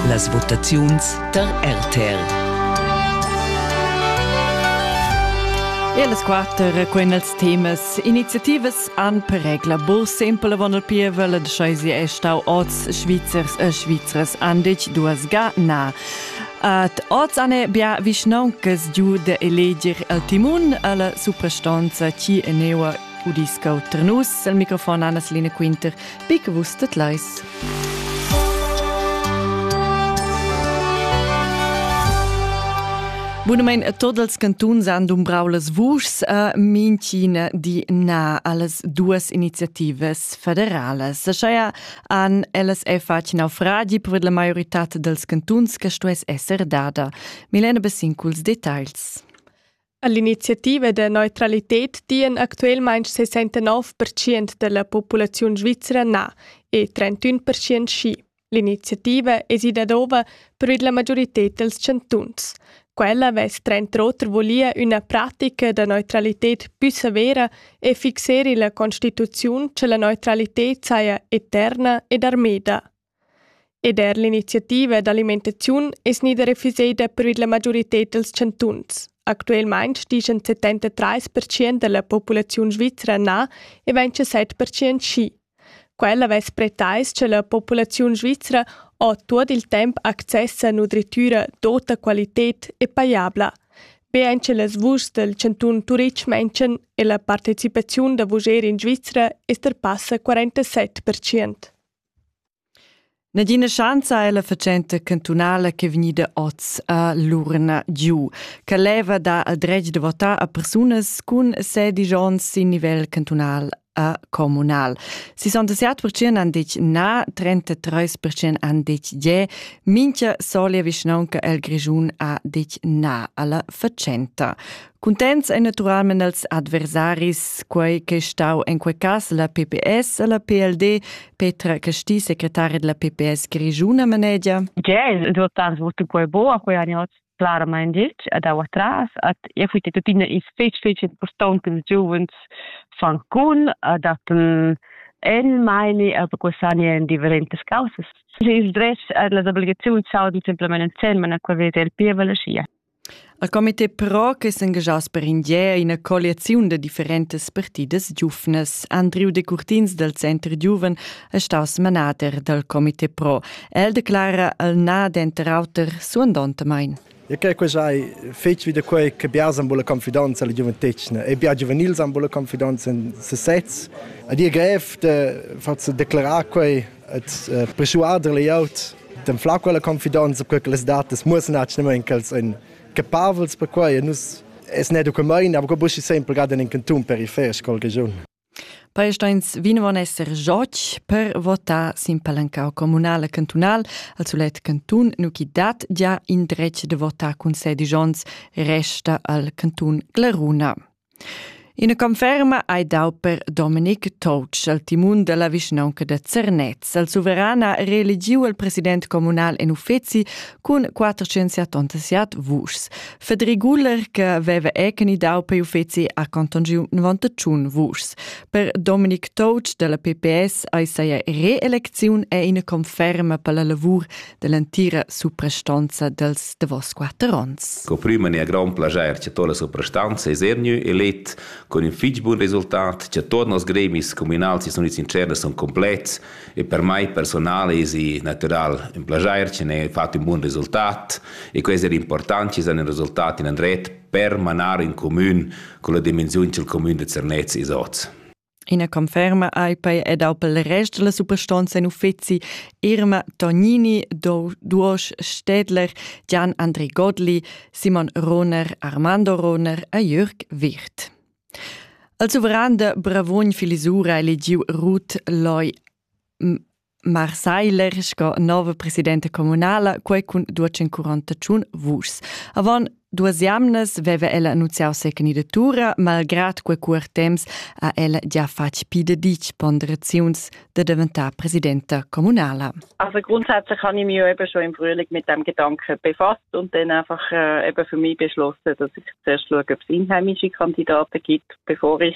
Las votaziuns tar RTL. E las quatter quenas temas iniziativas han per regla bur sempel avon il pievel da scheisi è stau oz Svizzers e Svizras andich duas ga na. Ad oz ane bia vischnauncas giu de eleger el timun alla suprastonza chi eneua udiscau Trnus. Al microfon Anna Line Quinter Be che vus tedlais. Bunamain tots els cantuns han dumbrau las vuschs a minchina di na allas duas iniziativas federalas. Scheia han ellas è fatg naufragi per la maiorità dels cantuns che stuess esser dada. Milena Bessin culs detagls. All'iniziativa da neutralited dian actuelmaing 69% della populaziun svizzera na e 31% schi. L'iniziativa es ida dova per la majorited dels chantuns. Quella vess trenter oter volia üna pratica da neutralited più severa e fixeri la constituziun che la neutralited saja eterna ed armeda. Ed er l'iniziativa d'alimentaziun è gnida refusada per la maioritad dals chantuns. Actualmain stian 73 percent da la populaziun svizra na e 27 percent schi. Quel avess pretais che la populaziun svizra ha tuot il temp access a nutritura d'ota qualità e pajabla. Be ein che las vuschs del chantun Turitg mention e la partecipaziun da vuger in Svizra è passa 47%. Nagina schanza è la fatschenta cantunala ch'è vegnida oz a l'urna giu, che leva dar il dretg da votar a persunas cun sedici onns sin nivel cantunal a communal. 67% han detg na, 33% han detg je, minchia solia vischnaunca el Grischun ha detg na alla fatschenta. Cuntents ein naturalmein els adversaris, quei che è stau en quei cass la PPS e la PLD, Petra Casti, secretari della PPS grigiuna manegia. Che il resultat svolto quei bo, a quei anni claramain ditg ad atras at e fui tuttina is fetg fetg important che ils giovens fan con ad atten en meini a quest'anno en differentes causas. Ils drets e las obligazioni saudi simplemente en mano quel vede il pievel sia. Il comité pro che s'engaschass per in di è ina colliaziun da differentas partidas giuvnas. Andriu Decurtins dal Center Giuven è staus manader dal comité pro. El declara el na denter auter suandontamain. E che questa è fetg vi da quei che biars han bulla confidenza alla giuventetgna e biar giuvenils han bulla confidenza in sesez. Ed è grev de farsi declarar quei Et persuader layout dem fla quella confidenza per che las datas mussen actualmente ch'els ein capavels per quei e nus es ne document aber buschi sempre gerade in canton periferisch scol region Palesteins vinvon esser joc per votar sin palancau comunal e cantunal al sulet cantun nu chi dat già in dretg de votar cun sedigions resta al cantun Glaruna. Ina conferma ei dau per Dominic Toutsch al timun dalla vischnaunca da Zernez. Il suveran ha reeligiu il president communal en uffeci cun 478 vuschs. Fedri Guller, che veva ecni dau per uffeci, ha contongiu 91 vuschs. Per Dominic Toutsch dalla PPS ei saia reelecziun e ina conferma per la lavur dell'entira suprastanza dels davos quatter onns. Co prima ne grand plager che toda suprastanza es ernü elet con in fich bun resultat che tot nos gremis comunals e unids interns son complets e per mai personale es natural un plager che ne fatto un buon resultat e questo è importante che un resultat in andret per manar in comun con la dimensione che il comune de Zernez is oz. Ina conferma ai pei ed al pel rest la suprastonza in uffizi Irma Tognini, Duosch Stedler, Gian Andri Godli, Simon Roner, Armando Roner e Jürg Wirt. Al suveran de Bravogn Filisura eligiu Ruth Loi Marseiler sco nova presidenta communala, quei cun 248 vuschs. Avant duas jamnas veva ella annunciau se candidatura, malgrad quei cuor temps ha ella già fatg pi de ditg ponderaziuns de diventar presidenta communala. Also grundsätzlich habe ich mich eben schon im Frühling mit dem Gedanken befasst und dann einfach äh, eben für mich beschlossen, dass ich zuerst schaue, ob es inheimische Kandidaten gibt, bevor ich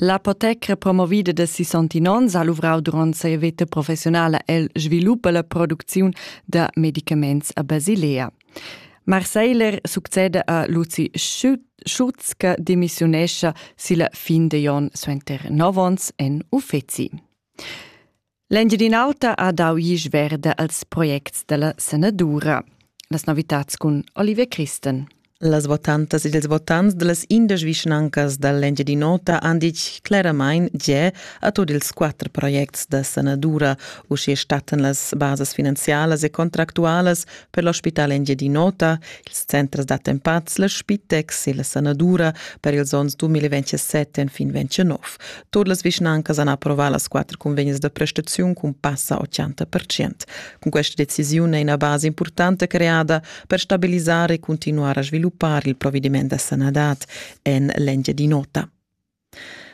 L'apotecra promovida da sissantin onns ha luvrau duront sia veta professionala el svilup e la producziun da medicaments a Basilea. Marceiler succeda a Luzi Schutz che demissiunescha silla fin de Jon suenter nov onns en uffeci. L'Engiadin'Auta ha dau isch verda als projects dalla sanadura. Las novitads cun Oliver Christen. Las votantas ed ils votants dallas indesch vischnancas dall'Engiadin'Ota han ditg claramain gia a tut ils quatter projects da sanadura, uschia stattan las basas finanzialas e contractualas per l'ospital Engiadin'Ota, ils centers d'attempats, la Spitex e la sanadura per ils onns 2027 fin 2029. Tut las vischnancas han approvà las quatter cunvegnas da prestaziun cun passa 80 Cun questa decisiun è ina basa importanta creada per stabilisar e continuar a sviluppar il provvediment da sanadad en l'Engiadin'Ota.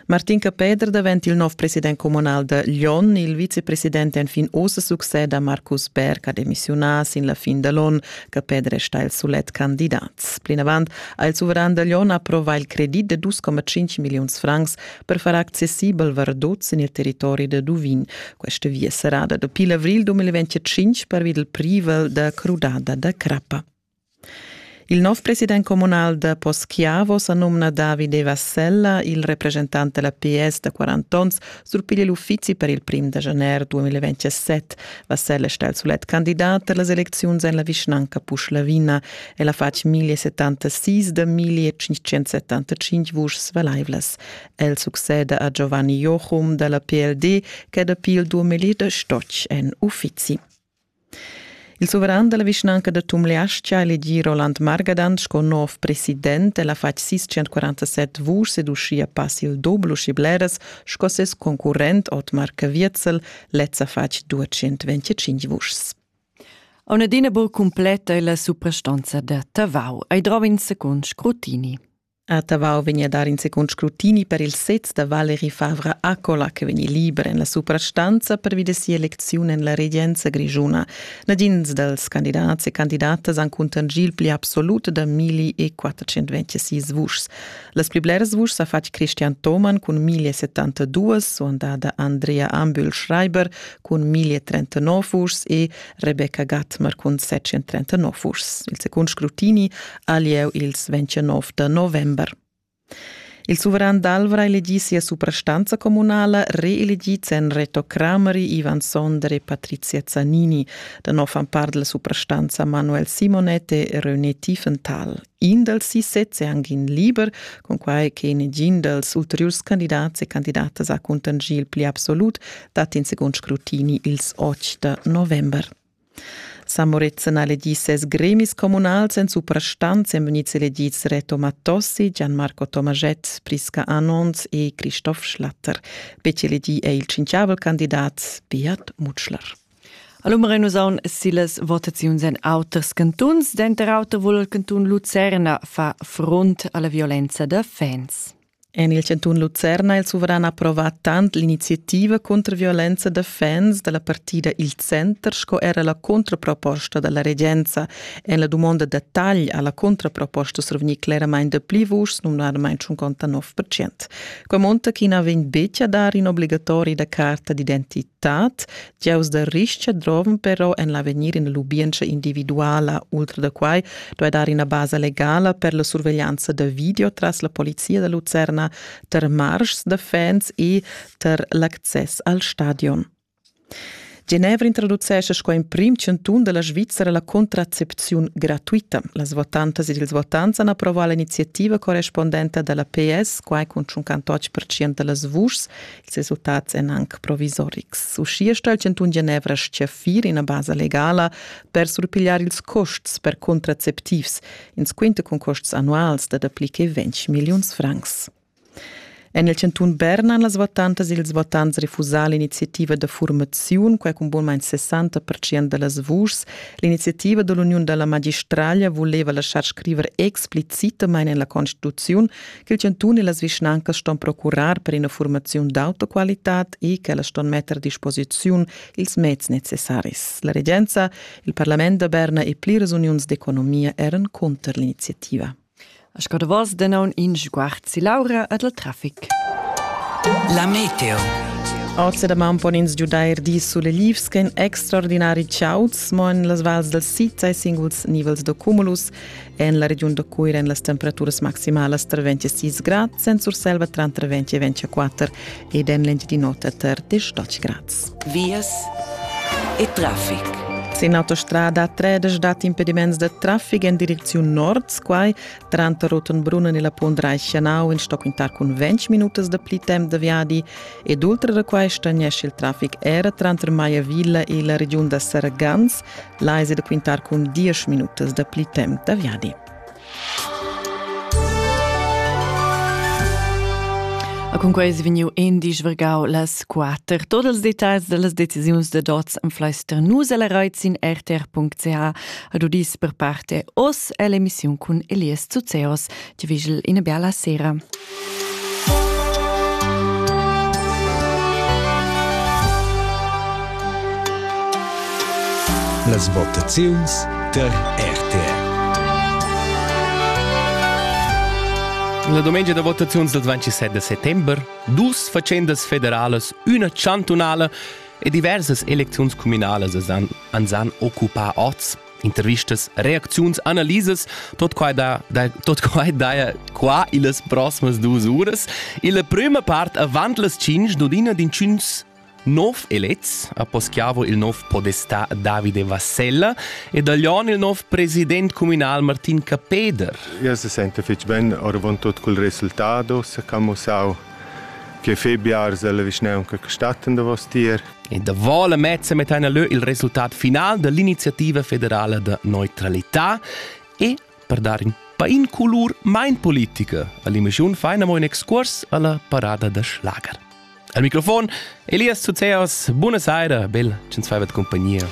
Martin Capeder davent il nov president comunal da Lyon. Il vicepresident enfin oz succeda Marcus Berg ha demissiunà sin la fin da l'on. Capeder è stà il sulet candidat. Plinavant ha il suveran da Lion approvà il credit da 2,5 milliuns francs per far accessibel Verdot sin il territori da Duvin. Questa via serrada dapi l'avril 2025 pervi del privel da crudada da crappa. Il nov president comunal da Poschiavo sa nomna Davide Vassella, il representant della PS da 40 ons Surpiglia l'uffizi per il prim da janer 2027 va Selle star sulet candidat per las elecziuns en la vischnanca Puschlavina. El ha fatg 1076 da 1575 vuschs valaivlas. El succeda a Giovanni Jochum dalla PLD, che dapi il 2008 en uffizi. Il suveran dalla vischnanca da Tumleastga elegì Roland Margadan sco nov president el ha fatg sis 147 vuschs ed uschia pass il dubel uschi bleras sco ses concurrent Otmar Caviezel lez ha fatg 225 vuschs. A Nedina buc completa è la suprastanza da Tavau ei drav in secund scrutini. A Tavau vegn a dar in secund scrutini per il sez da Valeri Favra Accola che vegni liber en la suprastanza pervi da sia elecziun en la regenza grischuna. Nagins dals candidats e candidatas han cuntanschì il pli absolut da 1426 vuschs. Las pli blers vuschs ha fatg Christian Thomann cun 1072, suandada Andrea Ambühl-Schreiber cun 1039 vuschs e Rebecca Gattmer cun 739 vuschs. Il secund scrutini ha lieu ils 29 da november. Il suveran d'Alvra elegì sia suprastanza communala, reelegì sen Reto Crameri, Ivan Sonder e Patrizia Zanini. Da nov fan part della suprastanza Manuel Simonette e René Tiefenthal. In dals sis sezs è anche in liber, con quai che negin dals ulteriors candidats e candidatas ha contingì il pli absolut, dat in secund scrutini ils 8 da november. San Moritzen ha elegì ses gremis communals en suprastant èn vegnids eledids Reto Mattossi, Gianmarco Tomaschett, Prisca Anons e Christoph Schlatter. Betg elegì è il tschintgavel candidat Beat Mutschler. All'umere nus aun silas votaziuns en auters cantuns, denter auter vul il cantun Lucerna fa front alla violenza da fans. En il chantun Lucerna ha il suveran approvà tant l'iniziativa contro violenza da fans da la partida Il Center sco era la contraproposta da la regenza. En la dumonda da tagl ha la contraproposta survegnì cleramain dapli vuschs, numnadamain tschun conta 9 Quai monta ch'i na vegn betg a dar in obligatori da carta d'identità tat, diaus da rischa drovan però en l'avegnir in lubientscha individuala. Ultra da quai duai dar ina basa legala per la surveglianza da video tras la polizia da Lucerna tar marschs da fans e tar l'access al stadion. Genevra introducesce sco emprim chanton della Svizzera la contraccepziun gratuita. Las votantas ed ils votants han approvato l'iniziativa correspondente della PS, quai con 58% da las vuschs Ils resultats èn anc provisorics. Uschia sto il chantun Genevra stgaffir ina basa legala per surpigliar ils custs per contraceptivs, ins quinta cun custs annuals da dapli che 20 milliuns francs. En il chantun Bern han las votantas e ils votants refusà l'iniziativa da formaziun, quai cun bunmain 60% da las vuschs. L'iniziativa da l'uniun da la magistraglia vuleva laschar scriver explicitamain en la constituziun ch'il chantun e las vischnancas ston procurar per ina formaziun d'auto qualitad e ch'ellas ston metter a disposiziun ils meds necessaris. La regenza, il parlament da Berna e pliras uniuns d'economia eran cunter l'iniziativa. A Scadavos denaun in sguard si Laura ed al traffic. La meteo. Oz da man pon ins giudair dis suleglivs ch'en extraordinari chauds, mo en las vals dal sid sai singuls nivels da cumulus. En la regiun da Cuira èn las temperaturas maximalas tra 26 grad, sen Surselva tranter 20 e 24 ed en l'Engiadin'Ota tar 18 grads. Vias e traffic. Sin autostrada tredesch dat impediments da traffic en direcziun nord, quai tranter Rotenbrunnen e la Pondrai-Chanau in Stockingtar cun 20 minutas da pli temp da viadi ed ultra da quai stagnesce il traffic era tranter Maiavilla e la regiun da Sargans Là es da quintar cun diesch minutas da pli temp da viadi. A cunquei es vegniu indisch vergau las quater. Tot els detalls dallas decisiuns da dots am fleister nus el Reiz in rtr.ch ad udis per parte os ell'emissiun cun Elias Zuzeos Ti vigel ina bella sera. Las votaziuns der RTR. La domenica da votaziuns del 27 settember, dus facendas federalas, una chantunala e diversas elecziuns communalas an, an san occupar oz. intervistas, reacziuns, analisas, tot quai, da, da, tot quai daja qua illas prossimas duas uras. Illa prima part avant las 5 d'odina din 5 nov elets a Poschiavo il nov podestà Davide Vassella e da Lyon il nov president communal Martin Capeder. Io se sente fitch ben oravant tot col resultado, se camussau che Febiar se la vischneunca statten da vostier. E davò la mezza metteina leu il resultat final dall'iniziativa federala da neutralità e per dar in pain colur mein politica all'emissiun feina mo in excurs alla parada da schlager. Al microfon Elias Zuzeos, buona saira, bel, cen svaivet compagnia.